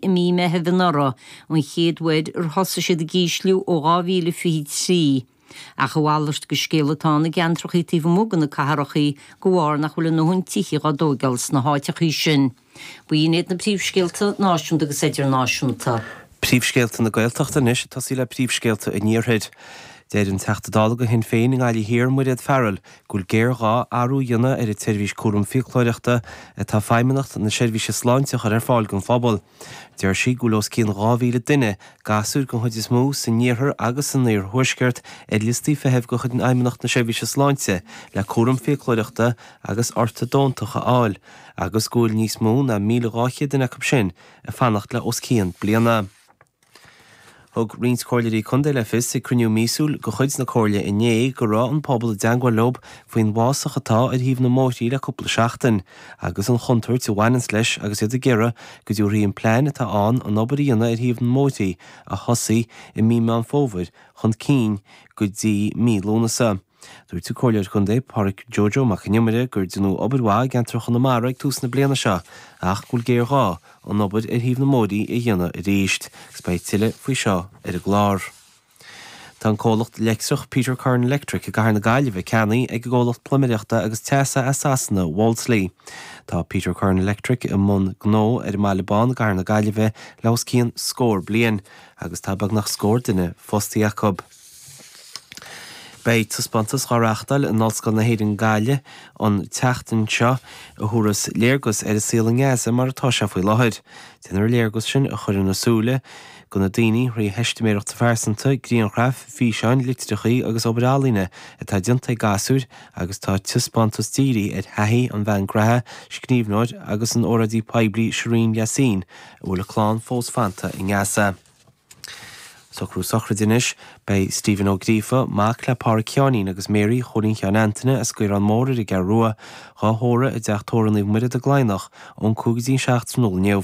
i mí Meithimh anuraidh, an chéad uair ar thosaigh siad ag ísliú ó 2023. Ach a mhalairt de scéal atá ann i gceantrachaí taobh amuigh de na catharachaí de bharr nach bhfuil a ndóthain tithíocht á dtóigeáil sna háiteachaí sin. Ba iad iad na príomhscéalta náisiúnta agus idirnáisiúnta. Príomhscéalta na Gaeltachta anois, tosaí le príomhscéalta an iarthair. Deir an Teachta Dála do Shinn Féin i nGaillimh Thiar, Mairéad Farrell, go bhfuil géarghá athrú a dhéanamh ar an tseirbhís cúram fiaclóireachta atá Feidhmeannacht na Seirbhíse Sláinte a chur ar fáil don phobal. Deir sí go bhfuil os cionn 2,000 duine, gasúir den chuid is mó, san iarthar agus san iarthuaisceart ar liostaí feithimh de chuid Fheidhmeannacht na Seirbhíse Sláinte le cúram fiaclóireachta agus ortadóntacht a fháil agus go bhfuil níos mó ná 1,200 duine acu sin ag fanacht le os cionn bliana. Thug roinnt Comhairleoirí Contae le fios ag cruinniú míosúil de chuid na Comhairle inné go raibh an pobal i dteangmháil leo faoin bhfásach atá ar thaobh na mbóithrí le cúpla seachtain agus an chontúirt a bhaineanns leis agus iad ag iarraidh go dtabharfaí an plean atá ann an obair a dhéanamh ar thaobh na mbóithrí a thosaí i mí Meán Fómhair chun cinn go dtí mí Lúnasa. Dúirt an Comhairleoir Contae Pádraig Joe Joe Mac an Iomaire gur déanadh obair mhaith i gceantar Chonamara ag tús na bliana seo ach go bhfuil géarghá an obair ar thaobh na mbóithrí a dhéanamh arís agus beidh tuilleadh faoi seo ar an gclár. Tá an comhlacht leictreach Peter Curran Electric i gCathair na Gaillimhe ceannaithe ag an gcomhlacht pluiméireachta agus teasa as Sasana Wolseley. Tá Peter Curran Electric i mbun gnó ar an mBaile Bán i gCathair na Gaillimhe le hos cionn scór bliain agus tá beagnach scór duine fostaithe acu. Beidh taispeántas á reáchtáil in Ollscoil na hÉireann Gaillimh an tseachtain seo a thabharfas léargas ar an saol i nGaza mar atá sé faoi láthair. Déanfar an léargas sin a chur ar a súile do na daoine, thrí theistiméireachtaí pearsanta, grianghraif, físeáin, litreacha agus obair ealaíne atá déanta ag gasúir agus tá an taispeántas dírithe ar thaithí an bhean ghnó, scríbhneoir agus óráidí poiblí Shireen Yassin a bhfuil a clann fós fanta i nGaza. Socrú sochraide anois. Beidh Stephen Ó Gríofa, mac le Pádraic Sheáinín agus Mary Chóilín Sheáin Antaine as Caorán Mór ar an gCeathrú Rua, dhá thórramh i dteach tórraimh Naomh Muire don Chladhnach ón 5 go dtí'n 7 tráthnóna inniu.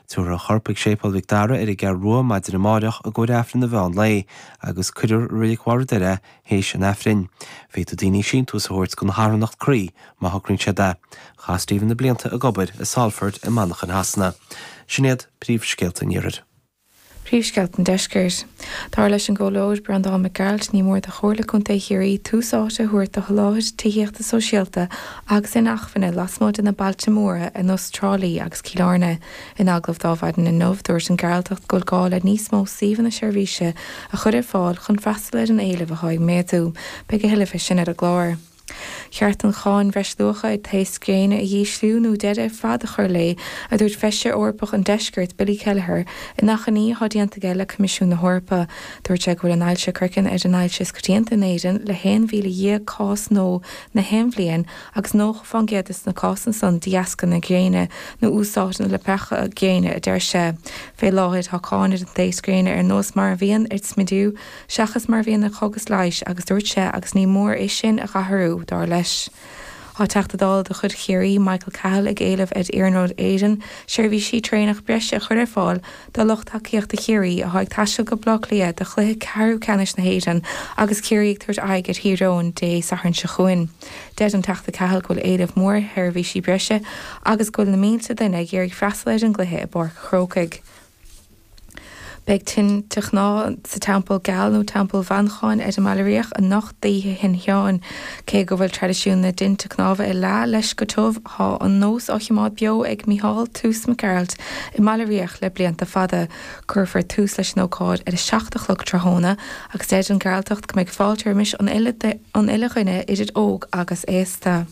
Tiúrfar a chorp ag Séipéal Mhic Dara ar an gCeathrú Rua maidin amáireach i gcomhair Aifreann an mheán lae agus cuirfear i Roilic Bharr an Doire é théis an Aifrinn. Féadfaidh daoine síntiús a thabhairt don charthanacht Croí má thograíonn siad é. Chaith Stephen na blianta ag obair i Salford i Manchain Shasana. Sin iad príomhscéalta an iarthair. Príomhscéalta an Deiscirt. Dar leis an gComhairleoir Breandán Mac Gearailt, ní mór do Chomhairle Contae Chiarraí tús áite a thabhairt do sholáthar tithíochta sóisialta agus inacmhainne lasmuigh de na bailte móra ar nós Trá Lí agus Cill Airne. In agallamh dó mhaidin inniu, dúirt an Gearaltach go bhfuil gá le níos mó suíomhanna seirbhíse a chur ar fáil chun freastal ar an éileamh atá ag méadú. Beidh a thuilleadh fé sin ar an gclár. cheart an Cháin Bhreisluacha ar Taos Gréine a dh'ísliú nó deireadh ar fad a chur léi, a dúirt Feisire Eorpach an Deiscirt, Billy Kelleher, in achainí atá déanta aige le Coimisiún na hEorpa. Dúirt sé go bhfuil an ailse craicinn ar an ailse is coitianta in Éirinn le 11,000 cás nua in aon bhliain agus 90 fán gcéad de na cásanna san de dheasca na gréine nó úsáid na leapacha gréine, a deir sé. Fé láthair tá cáin ar an taos gréine ar nós mar a bhíonn ar smidiú, seachas mar a bhíonn ar chógas leighis, agus dúirt sé agus ní mór é sin a dh'athrú, dar leis. Tá Teachta Dála de chuid Chiarraí, Michael Cahill, ag éileamh ar Iarnród Éireann seirbhísí traenach breise a chur ar fáil do lucht tacaíochta Chiarraí atá ag taisteal go Baile Átha Cliath do chluiche ceathrú ceannais na hÉireann agus Ciarraí ag tabhairt aghaidh ar Thír Eoghain Dé Sathairn seo chugainn. Deir an Teachta Cahill go bhfuil éileamh mór ar sheirbhísí breise agus go bhfuil na mílte duine ag iarraidh freastal ar an gcluiche i bPáirc an Chrócaigh. Beidh tine chnámh sa Teampall Geal nó Teampall Mhancháin ar an mBaile Riabhach anocht d'Oíche Shin Seáin. Cé go bhfuil traidisiún na dtinte cnámh ag leá leis go tiubh, tá an nós á thiomáint beo ag Micheál Toose Mac Gearailt i mBaile Riabhach le blianta fada. Cuirfear tús leis an ócáid ar a seacht a chlog tráthnóna agus deir an Gearaltach go mbeidh fáilte roimis an uile dhuine idir óg agus aosta.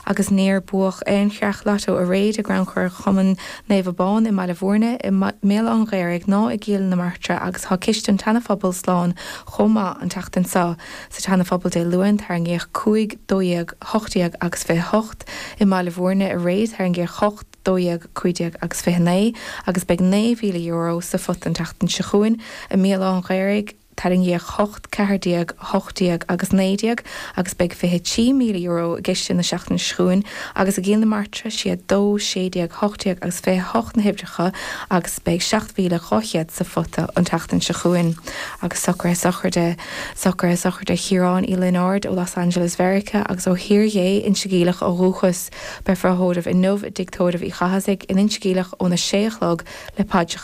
agus níor buadh aon cheann lotto aréir i gcrannchur Chumann Naomh Abán i mBaile Bhuirne, i mBéal Átha an Ghaorthaidh ná i gCill na Martra agus tá ciste an tSeana-Phobail slán chomh maith an tseachtain seo. Sa tSeana-Phobal Dé Luain tarraingíodh cúig, dó dhéag, hocht déag agus fiche hocht. I mBaile Bhuirne aréir tarraingíodh hocht, dó dhéag, cúig déag agus fiche naoi agus beidh €9,000 sa phota an tseachtain seo chugainn. I mBéal Átha an Ghaorthaidh. Tarraingíodh hocht, ceathair déag, hocht déag agus naoi déag agus beidh €23,000 i gciste na seachtaine seo chugainn agus i gCill na Martra, is iad dó, sé déag, hocht déag agus fiche a hocht na huimhreacha agus beidh €7,200 sa phota an tseachtain seo chugainn. Agus socruithe sochraide Chiaráin Uí Lionáird ó Los Angeles, Mheiriceá agus ó Thír Ghé Inse Geimhleach ó dhúchas, beifear á thórramh inniu i dTigh Tórraimh Uí Chathasaigh in Inse Geimhleach ón a sé a chlog le paidreacha.